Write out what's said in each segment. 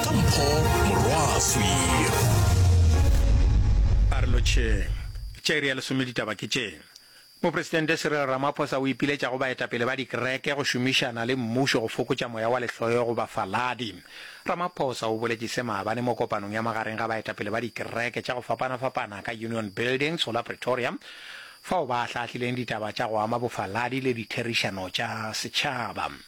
ka mpho morwaswi a re lotšheng tša iri ya lesome ditaba ke tše Mopresidente Cyril Ramaphosa o ipiletša go baetapele ba dikereke go šomišana le mmušo go fokotša moya wa lehloyo go bafaladi. Ramaphosa o boletše se maabane mo kopanong ya magareng ga baetapele ba dikereke tša go fapana-fapana ka Union Building, Solar Pretoria, fao ba ahlaahlileng ditaba tša go ama bofaladi le ditherišano tša setšhaba.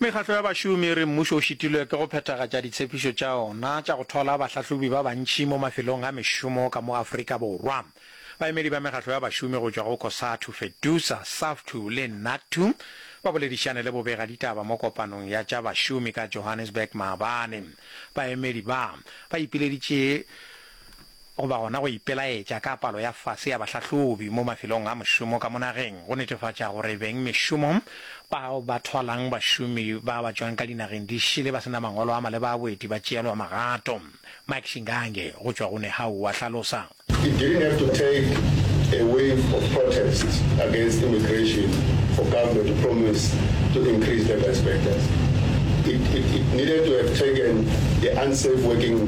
Mekgatlo ya bašomi e re mmušo o šitilwe ke go phethagatša ditshepišo tša ona tša go thola bahlahlobi ba bantši mo mafelong a mešomo ka mo Afrika Borwa. Baemedi ba mekgatlo ya bašomi go tšwa go Cosatu, Fedusa, Saftu le Nattu ba boledišane le bobega ditaba mo kopanong ya tša bašomi ka Johannesburg maabane. Baemedi ba, ba ipileditše goba gona go ipelaetša ka palo ya fase ya bahlahlobi mo mafelong a mošomo ka mo nageng go netefatša gore beng mešomo bao ba thwalang bašomi ba ba tšwang ka dinageng di šele ba se na mangwalo a maleba a boeti ba tšeelwa magato. Mike Shingange go tšwa go Nehawu o a hlalosa. He didn't have to take a wave of protests against immigration for government to promise to increase labour inspectors. It, it, it needed to have taken the unsafe working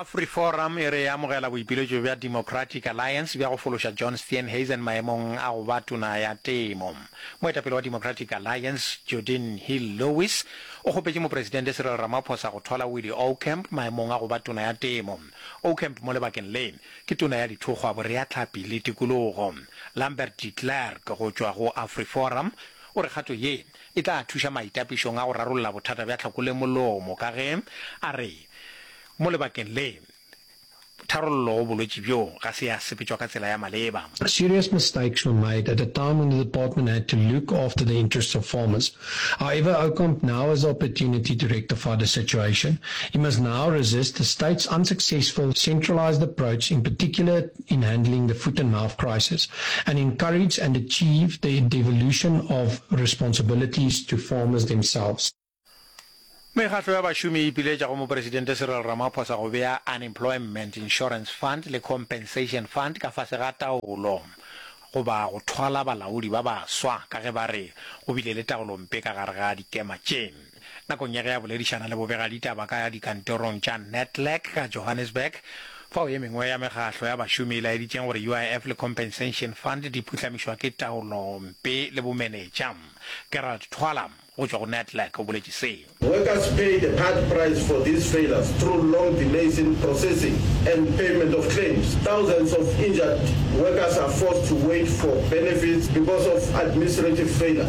AfriForum e re e amogela boipiletšo bja Democratic Alliance bja go fološa John Steenhuisen maemong a go ba Tona ya Temo. Moetapele wa Democratic Alliance, Jordine Hill Lewis, o kgopetše Mopresidente Cyril Ramaphosa go thola Willie Oukamp maemong a go ba Tona ya Temo. Oukamp mo lebakeng le, ke Tona ya Dithokgwa, Boreatlhapi le Tikologo. Lambert de Klerk go tšwa go AfriForum o re kgato ye e tla thuša maitapišong a go rarolla bothata bja tlhako le molomo ka ge a re, Mo lebakeng le, tharollo go bolwetši bjo ga se ya sepetšwa ka tsela ya maleba. Serious mistakes were made at a time when the department had to look after the interests of farmers. However, Ocamp now has the opportunity to rectify the situation. He must now resist the state's unsuccessful centralised approach, in particular, in handling the foot and mouth crisis and encourage and achieve the devolution of responsibilities to farmers themselves. Mekgatlo ya bašomi e ipiletša go Mopresidente Cyril Ramaphosa go bea Unemployment Insurance Fund le Compensation Fund ka fase ga taolo goba go thwala balaodi ba baswa ka ge ba re go bile le taolompe ka gare ga dikema tše. Nakong ya ge a boledišana le bobegaditaba ka dikantorong tša Netlec ka Johannesburg, fao ye mengwe ya mekgahlo ya bašomi e laeditšeng gore UIF le Compensation Fund di phuhlamišwa ke taolompe le bomenetša, Gerald Thwala go tšwa go Netlec o boletše se. Workers pay the hard price for these failures through long delays in processing and payment of claims. Thousands of injured workers are forced to wait for benefits because of administrative failure.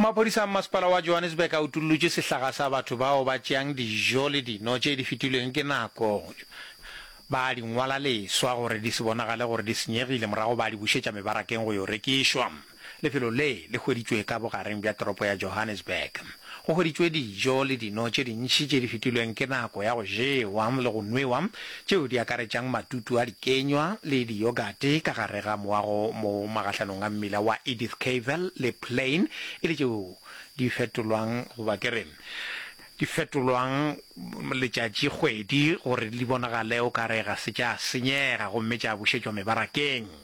Maphodisa a mmasepala wa Johannesburg a utollotše sehlaga sa batho bao ba tšeang dijo le dino tše di fetilweng ke nako ba di ngwala leswa gore di se bonagale gore di senyegile morago ba di bušetša mebarakeng go yo rekišwa. Lefelo le le hweditšwe ka bogareng bja toropo ya Johannesburg. Go hweditšwe dijo le dino tše dintši tše di fetilweng ke nako ya go jewa le go nwewa, tšeo di akaretšang matutu a dikenywa le diyogate ka gare ga moago mo magahlhanong a mmila wa Edith Cavell le Plain e le tšeo di fetolwang, goba ke re, di fetolwang letšatši-kgwedi gore di bonagale o ka re ga se tša senyega gomme tša bušetšwa mebarakeng.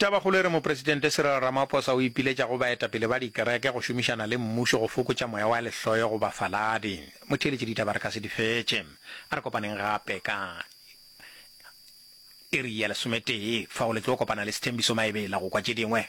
Tabakgolo e re Mopresidente Cyril Ramaphosa o ipiletša go baetapele ba dikereke go šomišana le mmušo go fokotša moya wa lehloyo go bafaladi. Motheeletši ditaba re ka se di fetše. A re kopaneng gape ka iri ya lesometee fao le tlo kopana le Sethembiso Maebela go kwa tše dingwe.